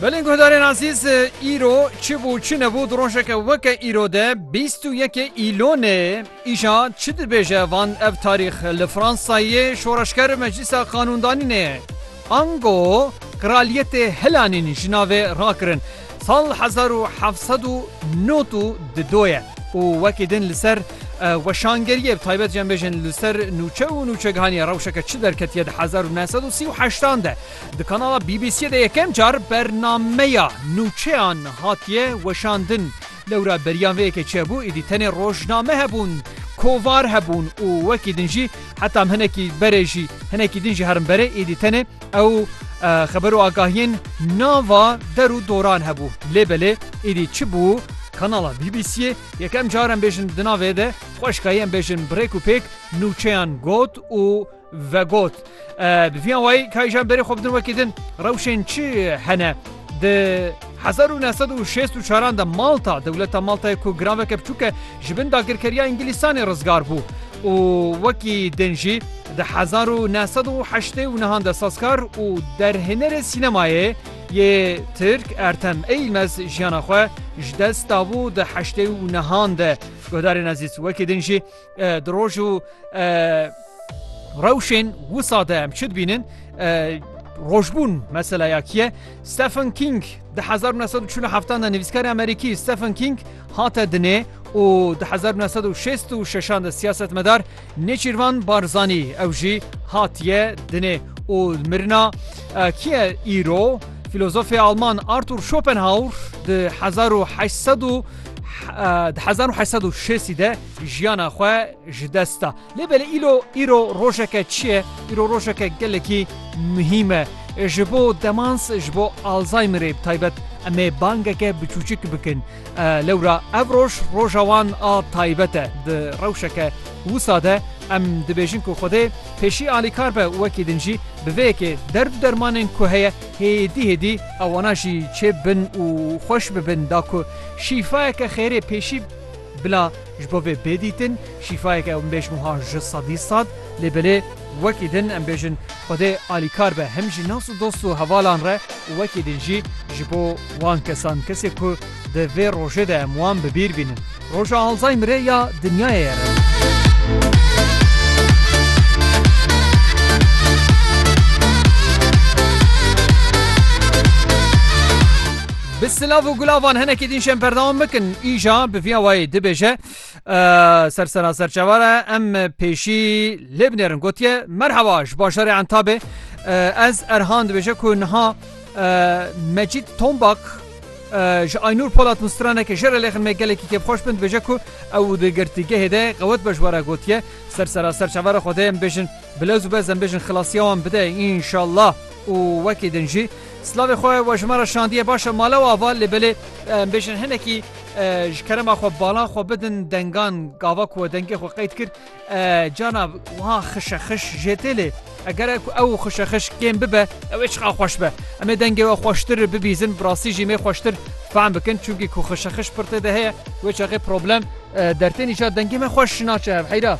Belên guhdarên Azîz îro çi bû çi nebû di rojeke weke îro de bîst û yekê îlonê îja çi dibêje van ev tarîx li Fransayê şoreşger meclîsa qanûndanînê ango kraliyetê hilanîn ji navê rakirin. Sal hezar û heft sed û nod û di do ye û wekî din li ser weşangeriyê bi taybet jî em bêjin li ser nûçe û nûçegihaniyê rewşeke çi derketiye di hezar û neh sed û sî û heştan de di kanala BBC'ê de yekem car bernameya nûçeyan hatiye weşandin. Lewra beriyan vê yekê çi hebû êdî tenê rojname hebûn, kovar hebûn û wekî din jî heta em hinekî berê jî hinekî din jî herin berê êdî tenê Ew xeber û agahiyên nava der û doran hebû. Lê belê êdî çi bû? Kanala BBC'ê yekem car em bêjin di navê de xweşikayî em bêjin birêk û pêk nûçeyan got û vegot. Bi vî awayî kayijan berê xwe bidin wekî din rewşên çi hene di 1964 de Malta dewleta Maltayê ku giraveke biçûk e ji bin dagirkeriya îngilîsanê rizgar bû. û wekî din jî di hezar û neh sed û heştê û nihan de sazkar û derhênerê sînemayê yê Tirk Ertem Eilmez jiyana xwe ji dest dabû di heştê û nihan de. Guhdarên ezîz, wekî din jî di roj û rewşên wisa de em çi dibînin? Rojbûn meseleyakî ye. Stephen King di hezar û neh sed û çil û heftan de nivîskarê Amerîkî Stephen King, Hate dinê û di hezar û neh sed û şêst û şeşan de siyasetmedar Nêçîrvan Barzanî ew jî hatiye dinê û mirina kî ye îro? Fîlozofê alman Artur Schopenhauer di hezar û heşt sed û di hezar û heşt sed û şêstî de jiyana xwe ji dest da. Lê belê îlo îro rojeke çi ye? Îro rojeke gelekî muhîm e. Ji bo demans, ji bo Alzheimerê bi taybet em ê bangeke biçûçik bikin. Lewra ev roj roja wan a taybet e. Di rewşeke wisa de em dibêjin ku Xwedê pêşî alîkar be û wekî din jî bi vê yekê derd û dermanên ku heye hêdî hêdî ewana jî çêbibin û xweş bibin da ku şîfayeke xêrê pêşî bila Ji bo vê bê dîtin, şîfayek ew nibêjm wiha ji sedî sad, lê belê wekî din em bêjin Xwedê alîkar be hem ji nas û dost û hevalan re û wekî din jî ji bo wan kesan, kesê ku di vê rojê de em wan bi bîr bînin. Roja Alzheimerê ya dinyayê ere. Bi silav û gulavan hinekî din şên berdewam bikin. Îja bi vîya wayê dibêje ser sera serçeva re em pêşî lê binêrin gotiye merheba ji bajarê entabê ez erhan dibêje ku niha Mecîd Tombak ji Aynur Polat Mustraneke ji re lêxin me gelekî kêfxweş bin dibêje ku ew di girtîgehê de qewet be ji were gotiye ser sera serçeva re xwedê em bêjin Bi lewz û bez em bêjin xilasiya wan bide înşallah û wekî din jî silavê xwe we ji me re şandiye baş e mala we ava lê belê em bêjin hinekî ji kerema xwe balan xwe bidin dengan gava ku we dengê xwe qeyd kir cana wiha xişe xiş jê tê lê eger e ku ew xişe xiş kêm bibe ew ê çiqa xweş be em ê dengê we xweştir bibîzin bi rastî jî mê xweştir fehm bikin çunkî ku xişe xiş pir tê de heye wê çaxê problem dertên îcar dengê me xweş naçe hev heyra.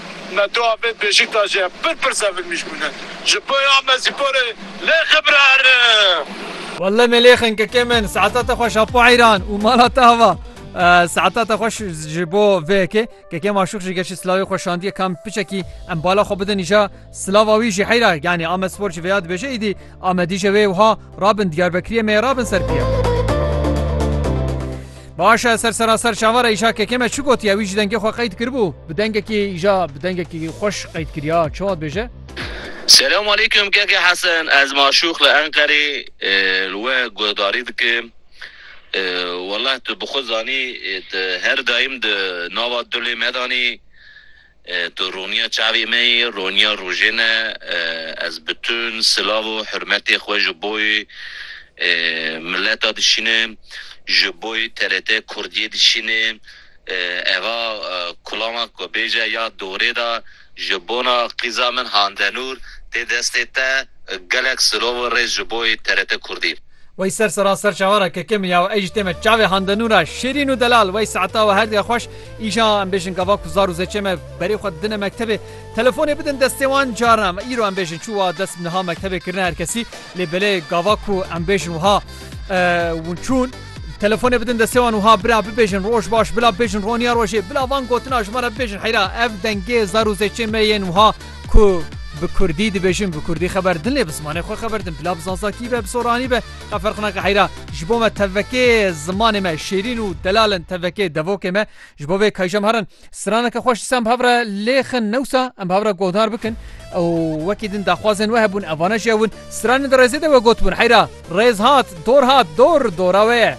Me tu avêt Bêşiktaşê ye pir pir sevilmîş bûne ji bo ya me spore lê xibrer. Welle Melêxin kekê min saeta te xweş Apo Eyran û mala te ava saeta te xweş ji bo vê yekê kekê maşûx jî geşî silavê xwe şandiye kam piçekî em bala xwe bidin îja silava wî jî heyra yanî ame spor jî vêya dibêje îdî Amedî je wê wiha rabin Diyarbekiriyê mê rabin ser pîya. Baş e ser seraser çavara îşa kekê me çi gotiye wî ji dengê xwe qeyd kiribû. Bi dengekî îşa bi dengekî xweş qeyd kiriya çi wat bêje. Selam aleykum Keke Hesen ez Maşûx li Enqerê li we guhdarî dikim Wallah tu bi xwe zanî tu her daîm di nava dulê me de anî Tu rûniya çavê me yî, rûniya rojê ne, ez bi tu, silav û hurmetê xwe ji boy mileta dişîne, ji boy TRT Kurdiyê dişîne, eva kulama ku bêje ya dorê da ji bona qîza min Handenûr tê destê te, gelek silav û rêz ji boy TRT Kurdî. Wey ser sera ser çavara kekemi ya û ey ji tême çavê handenû ra şêrîn û delal wey saeta û herdiya xweş îşa em bêjin gava ku zar û zêçê me berê xwe didine mektebê telefonê bidin destê wan carna em îro em bêjin çû wa dest niha mektebê kirine herkesî lê belê gava ku em bêjin wiha ûn çûn Telefonê bidin destê wan wiha bira bibêjin roj baş bila bêjin roniya rojê bila van gotina ji me re bibêjin heyra ev dengê zar û zêçê me yên wiha Ku bi kurdî dibêjin bi kurdî xeber din lê bi zimanê xwe xeber din bila bi zanzakî be bi soranî be qe ferq nake heyra ji bo me tevekê zimanê me şêrîn û delal in tevekê devokê me ji bo vê kayjem herin straneke xweş disa em bi hev re lêxin newsa em bi hev re guhdar bikin û wekî din daxwazên we hebûn evane jî hewin stranên di rêzê de we gotbûn heyra rêz hat dor hat dor dora wê ye.